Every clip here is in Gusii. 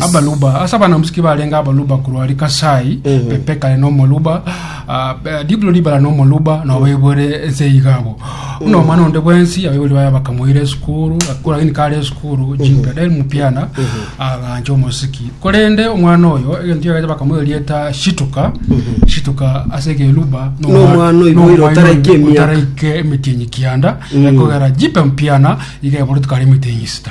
Abaluba, ase abanamsiki barenge abaluba korwa Rikasai, Pepekale na omoruba, ah, eh, Diblo ribara na omoruba, na obaibore ense igabo. Buna omwana onde bwensi, abaibori baye bakamoira esukuru, akura gini kare esukuru, jimpe, del mupiana, agancha omosiki. Korende omwana oyo, egento kiagacha bakamoira erieta Shituka, Shituka ase ekeruba, na Na omwana oyo boira otaraika emiaka. otaraika emetienyi kianda, ekogera jimpe mpiana, iga eborete kare emetienyi sita.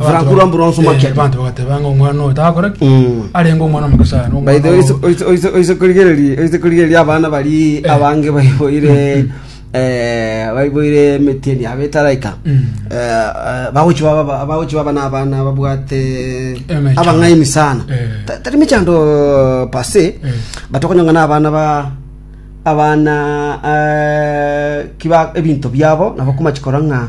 Frank Rwa Bronze Market. abantu bagateba ng'a omwana oyo takore ki Mm. arenge omwana omoke sana omwana By the way, oyo- oise- oise- oise- oise korigereria- oise korigereria abana bari abange baiboire eh, baiboire emetieni yabo etaraika Mm. Eh, eh, bagochi baba- bagochi baba n'abana babwate Emechando. abang'aini sana Eh. Ta- tari mechando pase Eh. batokonyonga n'abana ba abana eh, kiba ebinto biabo nabo komachikora ng'a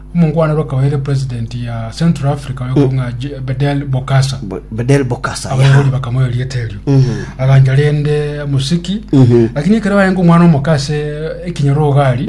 Omongwanero akaba ere president ya Central Africa oyokobung'a Je- Bedell Bokassa. Bo- Bedell Bokassa. yaha. abaibori bakamoa erieta erio agancha rende musiki lakini ekero baenga omwana omoka ase ekinyoro ogari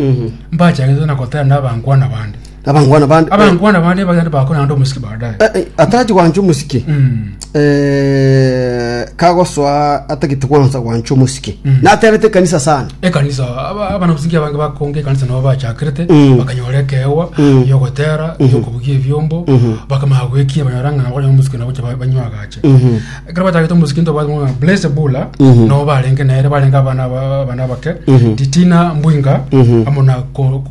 mbachagete na gotera na abankwana bande Abangwana bande. abankwana bande bagende bakora nande omusiki baadaye Eh, eh, Atachi gwancha omusike. Mm. eh, kagosoa atagete kwansa gwancha omosike Mm. naterete ekanisa sana ekanisa aba- abana musiki abange bakonga ekanisa nabo bachakirete Mm. bakanyora ekeewa Mm. yogotera Mhm. yokobugia ebiombo Mhm. bakamaya gwekia banyora ng'a nabo banyora musiki nabo cha ba- banywa agache Mhm. ekero batagete musiki nto bamwa blaze bula Mhm. nabo barenge nere barenge abana aba- abana bake Mhm. titina mbwinga Mhm. amo na ko-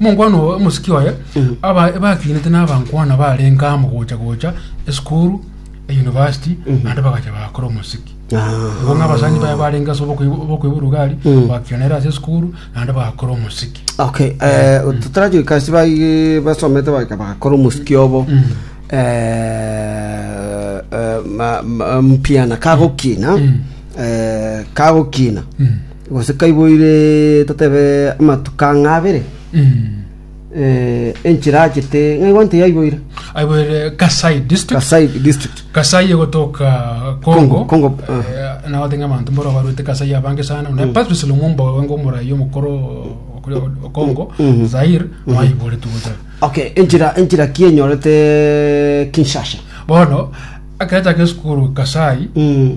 Monkwana obo omosiki oye aba bakinete n'abankwana barenge amo gocha gocha esukuru eyunivasiti naende bagacha bakora omosiki igo ng'a abasani baye barenge ase obokoiba orugari bakira nere ase esukuru naende bakora omosiki okay eh, totarachoika ase bai- basomete baika bagakora omosiki obo eh, eh, ma- ma- mpiana kagokina eh, kagokina Gose kaiboire totebe amatuko ang'e abere, enchera achete ng'a igwanto eye aiboire. Aiboire Kasai district. Kasai district. Kasai egotoka Congo. Congo, Congo, ah. Eh, nabo tenge abanto mboro barwete Kasai abange sana. Na Patrice Lumumba oyo ngo morayi omokoro okore Congo, Mhm. Zaire, maibore tugote. Okay, enchera enchera ki enyorete Kinshasa? Bono akere take esukuru Kasai Mm.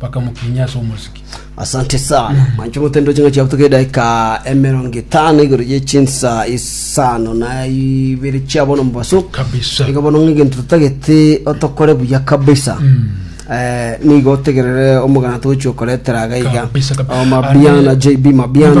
bakamokinyia ase omosiki. Asante sana manche motendwe ching'aki chiabo toka edaika emerongo etano igoro ye chinsa isano na ibere chia bono mobaso Kabisa. iga bono ng'egento totagete otokore buya kabisa Eh, nigo otegerere omogana togochia okoretera iga iga Kabisa, kabisa. Oh, mabiana Ane- jb mabiana